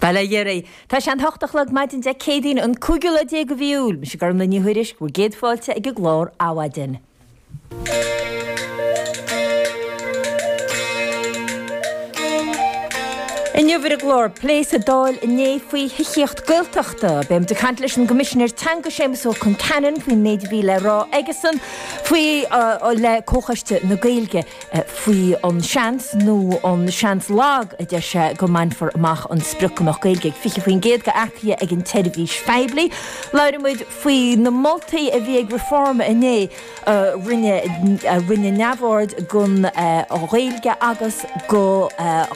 Bail ó Dhia oraibh. Tá sé an hocht a chlog maidin Dé Céadaoin an cúigiú lá déag de mhí Iúil. Mise Gormfhlaith Ní Thuairisg, bhur gcéad fáilte chuig an gclár Adhmhaidin. Inniu ar an gclár, plé sa Dáil inné faoi thithíocht Gaeltachta, beidh muid ag caint leis an gCoimisinéir Teanga Séamus Ó Concheanainn faoin méid a bhí le rá aigesean le Comhchoiste na Gaeilge. faoi an seans, nó an seans lag a deir sé, go mbainfear amach an sprioc go mbeadh Gaeilge ag 20% d'earcaithe ag an tseirbhís phoiblí. Labhróidh muid faoi na moltaí a bhí ag Reform inné a rinne neamhaird den Ghaeilge agus de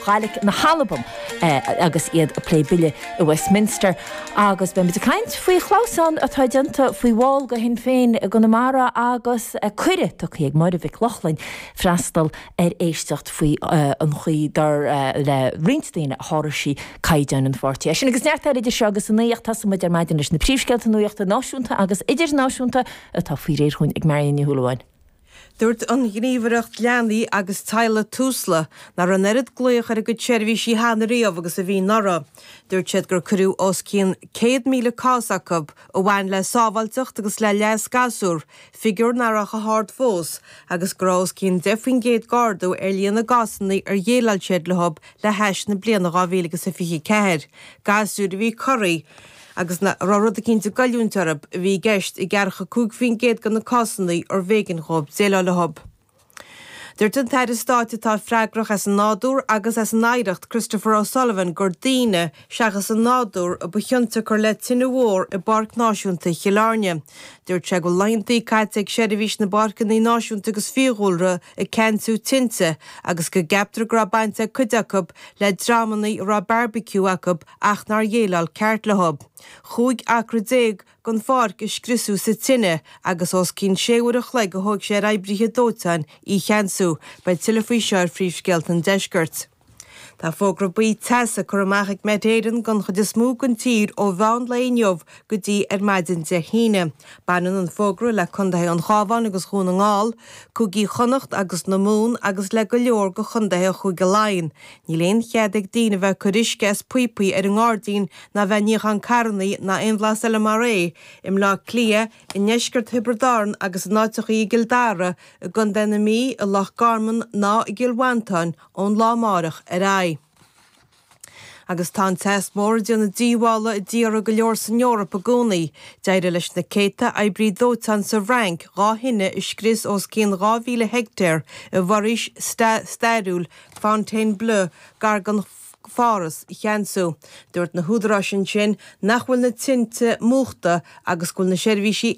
Ghàidhlig na hAlban agus iad ag plé bille i Westminster. Agus beidh muid ag caint faoi chlamhsán atá déanta faoi bhall de Shinn Féin i gConamara agus cuireadh tugtha do Muireann Mhic Lochlainn freastal ar éisteacht faoi an chaoi dar le roinnt daoine a sháraigh sí caighdeáin an pháirtí. É sin agus neart eile idir seo agus a naoi ach tosóidh muid ar maidin leis na príomhscéalta nuachta náisiúnta agus idirnáisiúnta atá faoi réir dúinn ag Máirín Ní Shúilleabháin. Dúirt an Ghníomhaireacht Leanaí agus Teaghlaigh, Tusla, nach raibh an oiread glaoch ar a gcuid seirbhísí cheana riamh agus a bhí anuraidh. Dúirt siad gur cuireadh os cionn 100,000 cás chucu a bhain le sábháilteacht agus le leas gasúr, figiúr nach raibh chomh hard fós, agus go raibh os cionn 10 faoin gcéad d'ardú ar líon na gcásanna ar dhéileáil siad leo le hais na bliana 2024, gasúir a bhí corraithe. Agus a raibh rud eicínt ag goilliúint orthu a bhí i gceist i gceathracha cúig faoin gcéad de na cásanna arbh éigean dhóibh déileáil leo. Dúirt an tAire Stáit atá freagrach as an nádúr agus as an oidhreacht, Christopher O'Sullivan, gur daoine, seachas an nádúr, a ba chionsiocair le tine mhór i bPáirc Náisiúnta Chill Airne. Dúirt sé go bhfuil laethanta caite ag seirbhís na bPáirceanna Náisiúnta agus Fiadhúlra ag ceannsú tinte agus go gceaptar go raibh baint ag cuid acu le dreamanna a raibh bearbaiciú acu ach nár dhéileáil ceart leo. Cúig acra déag den pháirc a scriosadh sa tine agus os cionn sé uair an chloig a thóg sé ar oibrithe dóiteáin í a cheannsú. Beidh tuilleadh faoi seo ar Phríomhscéalta an Deiscirt. Tá fógra buí teasa curtha amach ag Met Éireann don chuid is mó den tír ó mheán lae inniu go dtí ar maidin Dé hAoine. Baineann an fógra le condaetha an Chabháin agus Dhún na nGall, Cúigí Chonnacht agus na Mumhan agus le go leor de chondaetha Chúige Laighean, Níl aon chead ag daoine a bheith ag cur uisce as píopaí ar an ngairdín ná a bheith ag níochán carrannaí ná aon bhlas eile mar é i mBleá Cliath, i ndeisceart Thiobraid Árann agus in áiteachaí i gCill Dara, i gCondae na Mí, i Loch Garman ná i gCill Mhantáin ón lá amáireach ar aghaidh. Agus tá an teas mór ag déanamh díobhála i dtíortha go leor san Eoraip i gcónaí. D'éirigh leis na céadta oibrí dóiteáin sa bhFrainc dhá thine a scrios ós cionn 2,000 heictéar i bhforaois stairiúil Fontainebleau, gar do Pháras, a cheansú. Dúirt na húdaráis ansin nach bhfuil na tinte múchta agus go bhfuil na seirbhísí